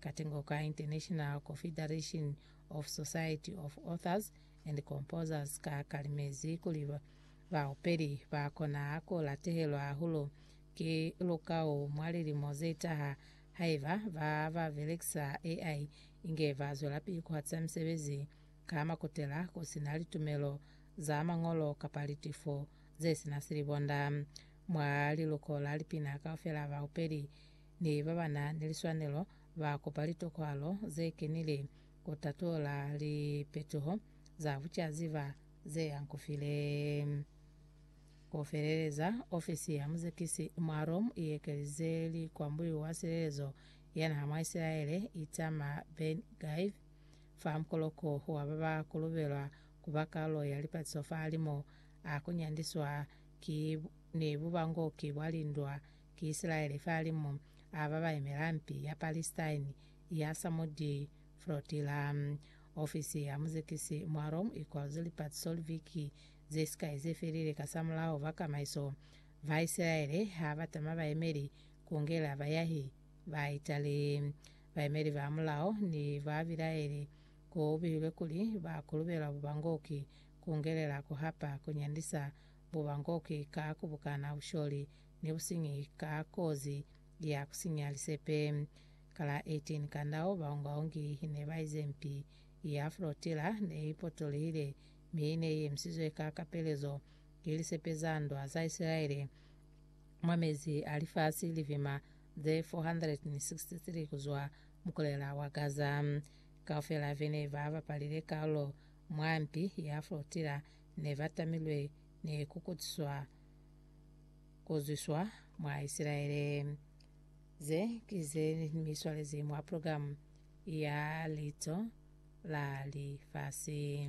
Katengo ka International Confederation of Society of Authors and Composers ka kalimezi kuli baupeli ba kona ku latehelwa hahulu ki lukau mwa lilimo ze taha haiba ba ba belekisa AI inge ba zwelapili ku hatisa misebezi ka makutela ku si na litumelo za mañolo kapa litifo ze si na silibonda. Mwa liluko la lipina kaufela baupeli ni ba ba na ni liswanelo ba kopa litokwalo ze kenile ku tatula lipetuho za bucaziba ze hankufile. Ku feleleza, ofisi ya muzekisi mwa Rome i ekelize likwambuyu wa silelezo ya naha mwa Isilaele, Itamar Ben-Gvir, fa mukoloko wa ba ba kolobelwa ku ba kalulo ya lipatiso fa limo a ku nyandiswa ki ni bubango ki bwa lindwa ki Isilaele fahalimu a ba ba yemela mpi ya Palestine ya Samudi Flotilla. Ofisi ya muzekisi mwa Rome i kwal'ze lipatiso liviki ze sikai ze felile kasamulaho fa kamaiso. Ba Isilaele ha ba tama bayemeli ku ngela bayahi ba Italy. Bayemeli ba mulao ne ba bilaeli ku bihilwe kuli ba kulubelwa bubangoki ku ngelela ku hapa ku nyandisa bubangoki ka ku bukana busholi ni businyi ka kozi ya kusinya lisepe. Ka la 18 Kandau, baongaongi ne baize mpi ya flotilla ne ipotolihile mi ne iemisizwe ka kapelezo ki lisepe za ndwa za Isilaele mwa mezi a lifasi livima ze 463 kuzwa mukulela wa Gaza. Kaufela bene ba bapalile kalulo mwa mpi ya flotilla ne batamilwe ni kukutiswa kuzwiswa mwa Isilaele. Ze ki ze mi swalezi mwa programu ya Lico la Lifasi.